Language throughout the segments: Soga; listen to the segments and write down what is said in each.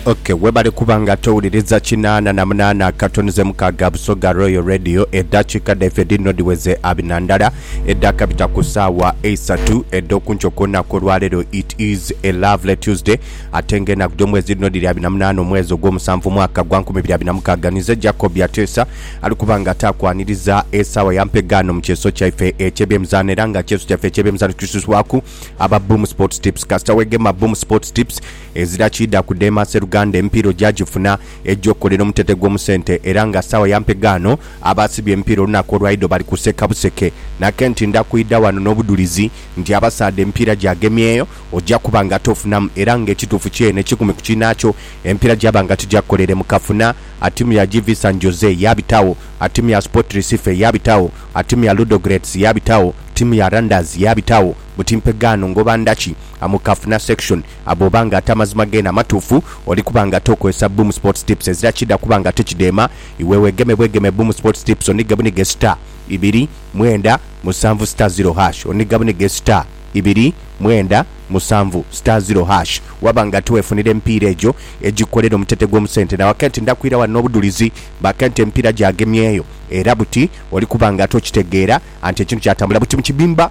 Okay, webale kuba nga towuliriza kinaana na munaana akatono ze mukaaga Busoga Royal Radio. Eddakiika dhaife dhino dhiweze abi na ndala edhaakabita ku ssaawa eisatu edh'okunkyo ku lunaku olwaleero. It is a lovely Tuesday ate nga enaku dh'omwezi dhino dhiri abi na munaana omwezi ogw'omusanvu omwaka gwa nkumi biri abi na mukaaga. Ninze Jacob Ateesa ali kuba nga taakwaniriza esaawa ya mpegaano mu kyeso kyaife eky'ebyemizaano era nga kyeso kyaife eky'ebyemizaano kisusibwaku Aba Boom Sports Tips Kasita wegema Boom Sports Tips, ezira kiidha kudheema Sseruganda emipiira ogyagifuna egy'okukolera omutete gw'omu sente era nga sawa ya mpegaano abaasibye emipiira olunaku olwaidho bali kuseka buseke. Nakenti ndha kwidha wano n'obudhulizi nti abasaadha emipiira gyagemyeyo ogya kuba nga tofunamu era nga ekituufu kyeene ekikumi ku kiinaakyo emipiira gyaba nga tigyakukolere mu kafuna. Attimu ya GV San Jose yaabitagho, attimu ya Sport Recife yaabitagho, A Ttiimu ya Ludogorets yaabitagho, ttiimu ya Randers yaabitagho, buti mpe gaano ngoba ndhaki? A Mu Kafuna Section, a Bw'oba nga ate amazima geene amatuufu, oli kuba nga ate okozesa Boom Sports Tips ezira kidha kuba nga ate kidheema, iwe weegeme bwegeme Boom Sports Tips onhige bunhige star, ibiri, mwenda, musanvu star ziro hash onhiga bunhige star, ibiri, mwenda, musanvu star ziro hash waba nga ate weefunira emipiira egyo egikolera omutete gw'omu sente. Nawe kenti ndhakwira ghano n'obudhulizi Baka nti emipiira gyagemyeyo era buti oli kuba nga ate okitegeera anti ekintu kyatambula buti mu kibimba.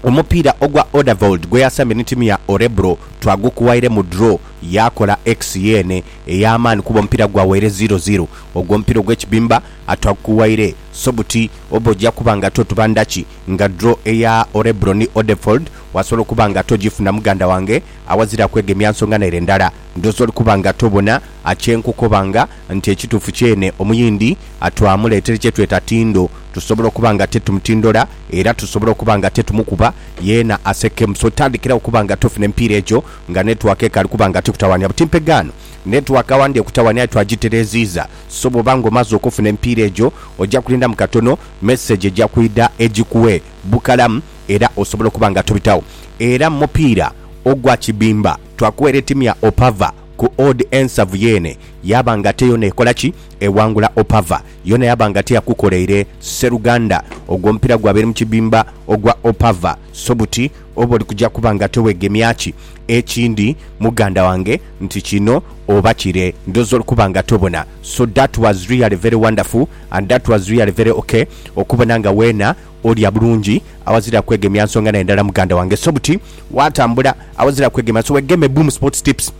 Omupiira ogwa Odavold gwe yasambye ni tiimu ya Orebro twagukuwaire mu draw yaakola ex yeene ey'amaani kuba omupiira gwawaire ziro ziro. Ogwo omupiira ogw'ekibimba atwagukuwaire so buti oba oja kuba nga ate otuba ndhaki nga draw eya Orebro ni Odevold wasobola okuba nga ate ogifuna muganda wange awazira kwegemya nsonga naire ndala. Ndhooza oli kuba nga ate obona kye nkukoba nga. nti ekituufu kyene omuyindi twamuleetera kye tweta tindo. Tusobola okuba nga titumutindola era tusobola okuba nga titumukuba yeena asekemu. So tandikira okuba nga tofuna emipiira egyo nga netiwaaka ekaali kuba nga tikutawaanya. Butimpe gaano, netiwaaka awandhi ekutawaanya aye twagitereeziiza. So bw'oba nga omaze okufuna emipiira egyo, oja kulindamu katono, mesegi eja kwidha egikuwe bukalamu era osobola okuba nga tobitagho. Era mu mupiira ogwa kibimba, twakuwa ereeti mya opava. Ku odd ensavu yeene yaaba nga te yoona ekola ki? Ewangula Opava. Yoona yaaba nga teyakukoleire. Sseruganda, ogwo omupiira gw'abaire mu kibimba ogwa Opava. So buti oba oli kuja kuba nga teweegemya ki? Ekindi muganda wange nti kino oba kire, ndhooza oli kuba nga tobona. So that was really very wonderful and that was really very ok okubona nga weena Olya bulungi awazira kwegemya nsonga naye ndala muganda wange so buti watambula awazira kwegemya so wegeme Boom Sports Tips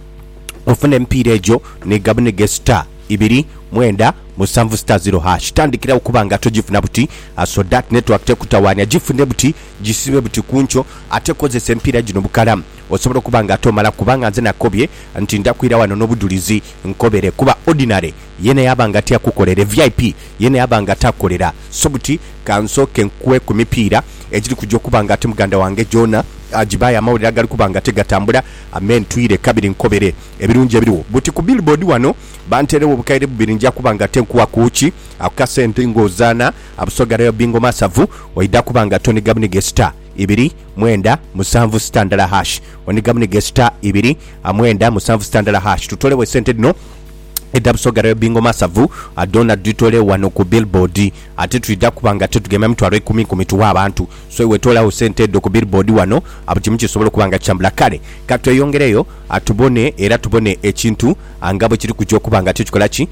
ofune emipiira egyo ni gabunige star ibiri mwenda musanvu star zero hash tandikirawo okuba nga togifuna buti so dat network tekutawanya gifune buti gisibe buti kunkyo ate kozesa emipiira gino bukalamu osobola okuba nga ate omala kubanga nze nakobye nti ndakwira wano nobudulizi nkobere kuba ordinary Yena yaba nga tiakukolera e vip yena yaba nga takukolera so buti kansooke nkue ku mipiira egiri kuja okuba nga ate muganda wange gyona agibaye amawulire agali kuba nga ate gatambula Amen twire kabiri nkobere ebirungi ebiriwo buti ku billboard wano banterewo obukaire bubiri nja kuba nga ate nkuwa ku ki ako kasente nga ozaana a Busoga Royal Bingo Masavu oidha kuba nga ate oniga buniga e star ibiri mwenda musanvu star ndala hash oniga buniga e star ibiri a mwenda musanvu star ndala hash tutolewo e sente dhino edha Busoga Rail Bingo Masavu dhoona dhitole wano ku billboard ate twidha kuba nga tutugemya mitwalo ikumi ikumi tughe abantu so iwe toolagho sente dho ku billboard wano buli kimu kisobole okuba nga kitambula kale katweyongereyo tubone era tubone ekintu nga bwekiri kuja okuba nga tikikola ki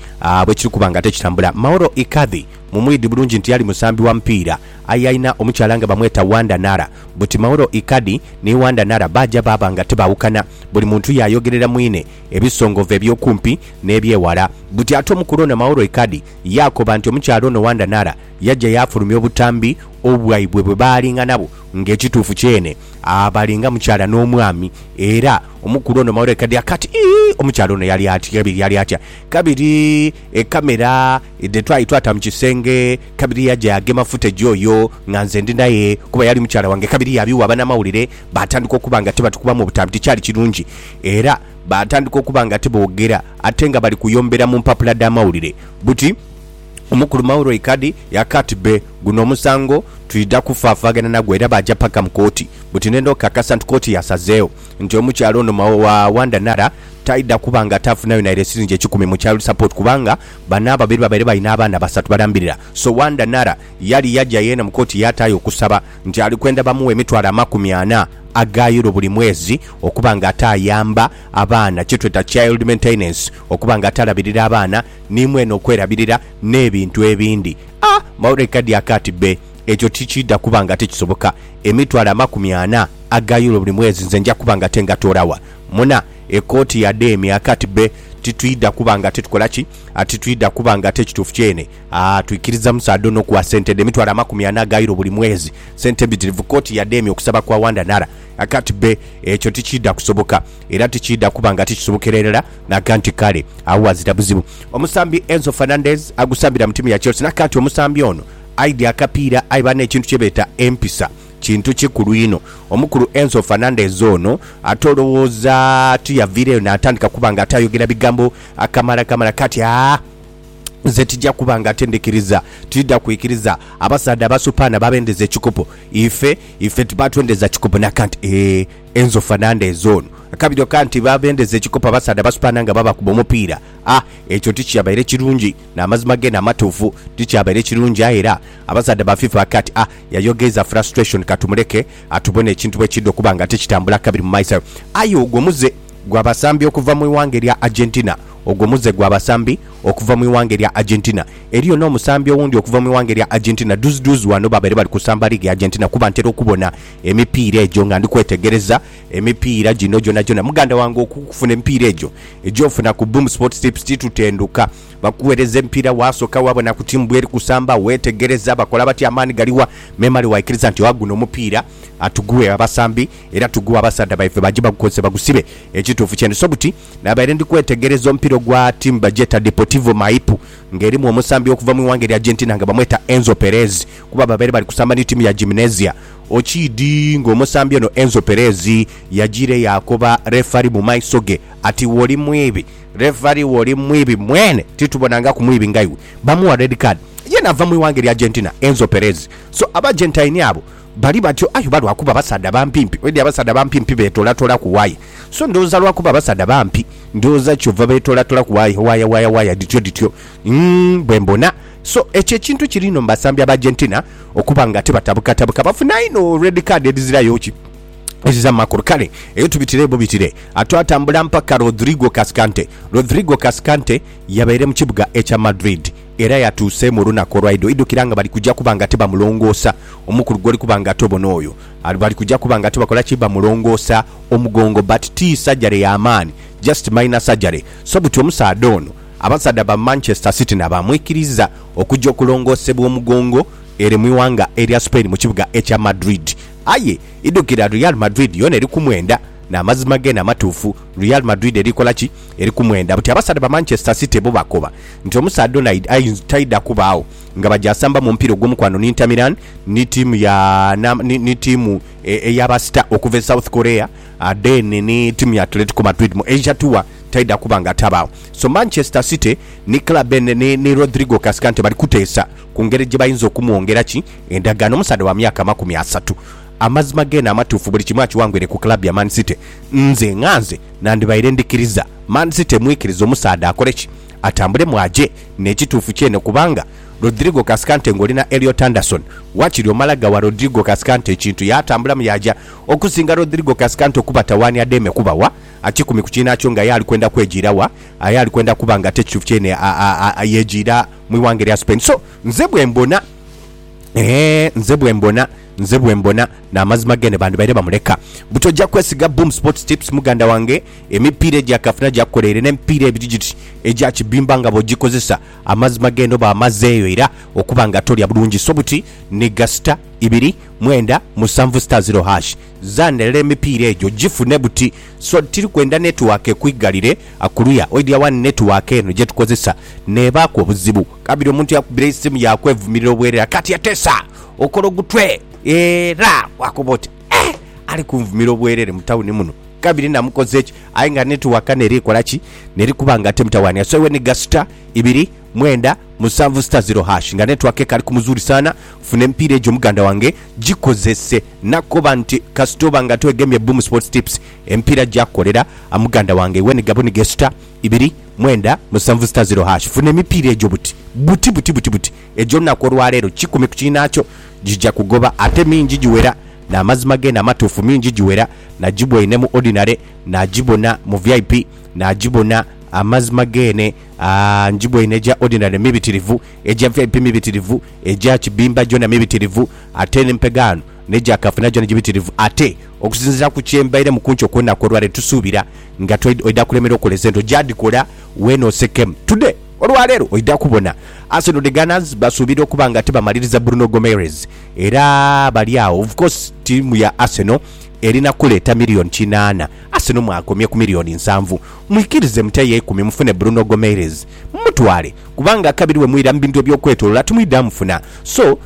bwekiri kuba nga tikitambula Mauro Icardi mumwidhi bulungi nti yali musambi wa mupiira aye alina omukyala nga bamweta Wanda Nara buti Mauro Icardi ni Wanda Nara baaja baaba nga tibaawukana buli muntu yaayogerera mwine ebisongovu eby'okumpi n'eby'eghala. Buti ate omukulu ono Mauro Icardi yaakoba nti omukyala ono Wanda Nara yaja yaafulumya obutambi obwaibwe bwe baalinga nabwo nga ekituufu kyene abali nga mukyala n'omwami era omukulu ono Mauro Icardi akaaba ati, Ii, omukyala ono yali atya kabiri yali atya kabiri ekamera dhe twali twata mu kisenge kabiri yaja yaagema footage oyo nga nze ndi naye kuba yali mukyala wange kabiri yaabiwa banamawulire baatandika okuba nga tibatukubamu obutambi tikyali kirungi Era baatandika okuba nga tiboogera ate nga bali kuyombera mu mpapula dh'amawulire buti, Omukulu Mauroy Kadhi yakaati be, guno omusango twidha kufaafaaghana nagwo era baaja paka mu kooti buti ne n'okukakasa nti kooti yasazeegho nti omukyala ono Wanda Nara taidha kuba nga ataafunayo naire siringi ekikumi mu child support kubanga bano ababiri babaire balina abaana basatu balambirira so Wanda Nara yali yaja yeena mu kooti yaataayo okusaba nti ali kwenda bamuwe emitwalo amakumi ana aga Euro buli mwezi okuba nga ate ayamba abaana, kyetweta child maintenance, okuba nga ate alabirira abaana ni mwene okwerabirira n'ebintu ebindi. A! Maureen Kadiak ati, Bbe, ekyo tikiidha kuba nga ate kisoboka. Emitwalo amakumi ana aga Euro buli mwezi nze nja kuba nga ate ngatoora wa? Muna ekooti ya Demi aka ati, Bbe, titwidha kuba nga ate tukola ki? Ati, Titwidha kuba nga ate kituufu kyene. A, Twikiriza musaadha ono okuwa sente dhe mitwalo amakumi ana aga Euro buli mwezi. Sente mbitirivu koti yademya okusaba kwa Wanda Nara. Aka ti be, ekyo tikiidha kusoboka. Era tikiidha kuba nga tikisobokera irala. Naga nti kale, agho ghazira buzibu. Omusambi Enzo Fernandez agusambira mu tiimu ya Chelsea naga nti omusambi ono aidhi akapiira aye banne ekintu kye beeta empisa kintu kikulu inho. Omukulu Enzo Fernandez ono ate olowooza tiyaviireyo natandika kuba nga ate ayogera bigambo akamala kamala kati? A. Nze tija kuba nga ate ndhikiriza. Tidha kwikiriza abasaadha abasupaana babendeza ekikopo. Ife, ife tibatwendeza kikopo nakanti. Eeh, enzofa nandha ezo ono. Akabiro kanti babendeza ekikopo abasaadha abasupaana nga babakuba omupiira. Ah, ekyo tikyabaire kirungi. N'amazima geene amatuufu, tikyabaire kirungi. Aye era abasaadha ba FIFA bakati, Ah, yayogeeza frustration, katumuleke atubone ekintu bwe kidha okuba nga tikitambula kabiri mu maiso. Aye ogwo muze. Gwa basambi okuva mu ighanga erya Argentina. Ogwo muze gwa basambi okuva mu ighanga erya Argentina. Eriyo n'omusambi owundi okuva mu ighanga erya Argentina dhuzidhuzi ghano babaire bali kusamba liigi ya Argentina kuba ntera okubona emipiira egyo nga ndi kwetegereza emipiira gino gyonagyona. Muganda wange okufuna emipiira egyo egy'ofuna ku Boom Sports Tips titutenduka. Bakugheereza emipiira waasoka waabona ku ttiimu bweri kusamba, weetegereza bakola batya, amaani galiwa memale waikiriza nti oha guno omupiira atugughe abasambi. Era tugugha abasaadha baife baje bagukozese bagusibe. Ekituufu kyendi so buti. Nabaire ndi kwetegereza omupiira ogwa tiimu bagyeta Deportivo Maipo nga erimu omusambi okuva mu ighanga erya Argentina nga bamweta Enzo Perez kuba babaire bali kusamba ni tiimu ya Gimnasia. Okiidhi nga omusambi ono Enzo Perez yajiire yaakoba refari mu maiso ge ati woli mwibi refari woli mwibi mwene titubonangaku mwibi nga iwe. Bamuwa red card ye naava mu ighanga erya Argentina Enzo Perez. So aba Argentine abo Bali batyo, aye oba lwa kuba basaadha bampimpi? Oidhi abasaadha bampimpi beetoolatolaku waaya. So ndhooza lwa kuba basaadha bampi, ndhooza kyova beetoolatolaku waaya, waaya, waaya, waaya dhityo dhityo. Umm, bwe mbona. So, ekyo ekintu kiri inho mu basambi Ab'Argentina okuba nga tibatabukatabuka. Bafuna inho red card edhizirayo ki? Edhiza mu makulu. Kale, eyo tubitire bubitire. A Twatambula mpaka Rodrigo Cascante. Rodrigo Cascante yabaire mu kibuga ekya Madrid. Era yatuuse mu lunaku olwaidho idhukira nga bali kuja kuba nga tibamulongoosa omukulu gwoli kuba nga tobona oyo ali bali kuja kuba nga tibakola ki bamulongoosa omugongo but ti surgery ya maani just minor surgery so buti omusaadha ono abasaadha ba Manchester city na bamwikiriza okuja okulongoosebwa omugongo ere mwiwanga erya Spain mukibuga ekya Madrid aye idhukira Real Madrid yona eri kumwenda namazima gene amatuufu Real Madrid eri kola ki Eri ku mwenda buti abasaadha ba Manchester City bo bakoba nti omusaadha ono aidha taidha kubaagho nga baja asamba mu mupiira ogw'omukwano ni Inter Milan ni ttiimu ya ni ttiimu eya basita okuva e South Korea then ni ttiimu ya Atletico Madrid mu Asia Tour taidha kuba nga tabaagho. So Manchester City ni club eno ni ni Rodrigo Cascante bali kuteesa ku ngeri gye bayinza okumwongera ki endagaano omusaadha wa myaka amakumi asatu. Amazima geene amatuufu buli kimu akiwangwire ku club ya Man City nze nga nze. Nandibaire ndikiriza Man City emwikirize omusaadha akole ki? Atambulemu aje? N'ekituufu kyene kubanga Rodrigo Cascante ng'oli na Elliot Anderson, wakiri omala ghawa Rodrigo Cascante ekintu yaatambulamu yaaja. Okusinga Rodrigo Cascante okubatawanya ademe kubawa kikumi ku kiinaakyo nga aye ali kwenda kwejiira wa? Aye ali kwenda kuba ng'ate ekituufu kyene yejiira mu ighanga erya Spain. So, nze bwe mbona. Eeh nze bwembona nze bwembona namazima gene bandibaire bamuleka buti oja kwesiga boom sports tips muganda wange emipiira egya kafuna gyakukola ere nemipiira ebiri giti egya kibimba nga bwogikozesa amazima gene oba amazeeyo era okuba nga tolya bulungi so buti niga star ibiri mwenda musanvu star zero hash zandelera emipiira egyo gifune buti so tiri kwenda network ekwigalire kuluya oidya wani network eno gyetukozesa nebaaku obuzibu Kabiri omuntu yakubira eisimu yakwevumirira obwerera kati etesa okola ogutwe era wakoba oti eeh ali kunvumira obwerere mu tawuni muno kabiri namukoze ki aye nga netiwaka neri kola ki neri kuba nga temutawaanira so iwe niga sita ibiri mwenda musanvu sita ziro hash nga netiwaka ekali kumuzulisaana funa emipiira egyo muganda wange gikozese nakoba nti kasita oba nga twegemye Boom Sports Tips emipiira gyakukolera muganda wange iwe niga buniga esita Ibiri, mwenda, musanvu sita ziro hash. Funa emipiira egyo buti buti buti buti buti egyo lunaku olwaleero kikumi ku kiinaakyo gija kugoba ate mingi giwera n'amazima geene amatuufu mingi giwera nagibwaine mu ordinary nagibona mu vip nagibona amazima geene aah ngibwaine egya ordinary mibitirivu egya vip mibitirivu egya kibimba gyona mibitirivu ate ni mpegaano Ne Jakafu nagya ni gibitirivu ate. Okusinziira ku kye mbairemu ku nkyo kw'olunaku olwaleero, tusuubira nga twaidha oidha kulemerwa okukola esente ogyadhikola weene osekemu. Today, olwaleero, oidha kubona. Arsenal the Gunners basuubira okuba nga tibamaliriza Bruno Gomeres era bali agho. Of course, ttiimu ya Arsenal erina kuleeta million kinaana. Arsenal mwakomye ku million nsanvu. Mwikirize muteyo eikumi mufune Bruno Gomeres mumutwale kubanga akabiri bwe mwira mu bintu eby'okwetolola timwidha mufuna. So.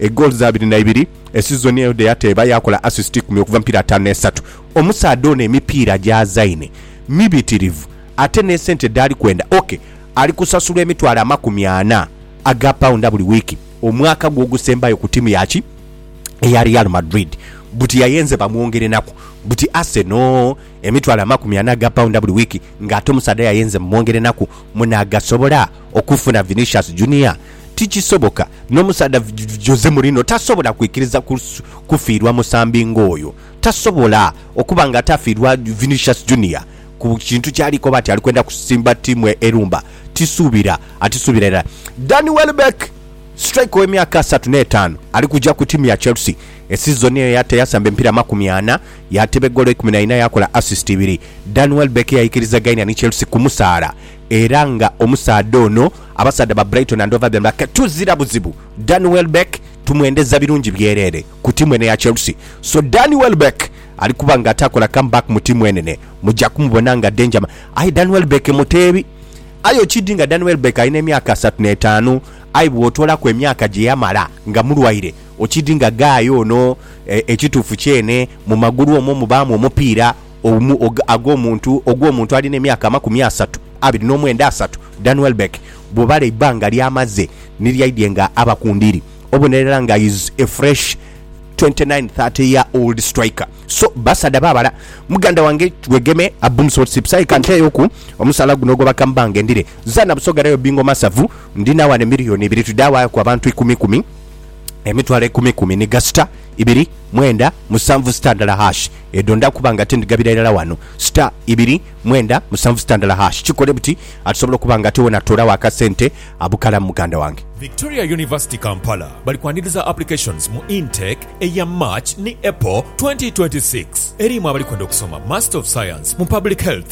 egoolo za abiri na ibiri. Esizoni eyo dhe yateeba yaakola assist ikumi okuva mu mipiira ataanu n'esatu. Omusaadha ono emipiira gy'azaine mibitirivu ate n'esente dhaali kwenda ok. Ali kusasulwa emitwalo amakumi ana aga paunda buli wiiki omwaka gwe ogusembayo ku tiimu ya ki eya Real Madrid buti yayenze bamwongerenaku buti Arsenal emitwalo amakumi ana aga paunda buli wiiki ng'ate omusaadha yayenze mumwongerenaku. Munaagasobola okufuna Vinicius Junior? Tikisoboka. N'omusaadha Jose Mourinho tasobola kwikiriza kufiirwa musambi ng'oyo. Tasobola okuba nga atafiirwa Vinicius Junior ku kintu kyali koba ati ali kwenda kusimba ttiimu erumba. Tisuubira. Atisuubira irala. Danny Welbeck, striker ow'emyaka asatu n'etaanu, ali kuja ku ttiimu ya Chelsea. Esizoni eyo yata yasamba emipiira makumi ana, yaateba egoolo ikumi na ina, yaakola assist ibiri. Danny Welbeck yaikiriza gaine ni Chelsea kumusaala. Era nga omusaadha ono abasaadha ba Brighton and Hove Albion bake tuzira buzibu Danny Welbeck tumwendeza birungi byerere ku tiimu eno eya Chelsea so Danny Welbeck ali kuba nga atakola come back mu tiimu enene muja kumubona nga danger man aye Danny Welbeck muteebi aye okidi nga Danny Welbeck alina emyaka asatu n'etaanu aye bw'otoolaku emyaka gye yamala nga mulwaire okidi nga guy ono e, ekituufu kyene mu magulu omwo mubaamu omupiira Omu og ag'omuntu ogw'omuntu alina emyaka amakumi asatu abiri n'omwenda asatu, Dan Welbeck bw'obala eibbanga ly'amaze ni lyaidhie nga aba ku ndiri, obonerera nga is a fresh twenty nine thirty year old striker. So basaadha baabala, muganda wange wegeme a boom sort sips aye ka nteeyoku omusaala guno ogwa bakammbange ndire zaana Busoga Rayo Bingo Masavu ndina wano emiliyoni ibiri twidha waaku abantu ikumi ikumi, emitwalo ikumi ikumi ni gasita. ibiri, mwenda, musanvu sita ndala hash edho nda kuba nga tindigabira irala wano sita ibiri, mwenda, musanvu sita ndala hash kikole buti atusobola okuba nga ate wena atoolawo akasente abukalamu muganda wange. Victoria University Kampala bali kwaniriza applications mu intake eya March ni April twenty twenty six erimu abali kwenda okusoma Master of Science mu Public Health,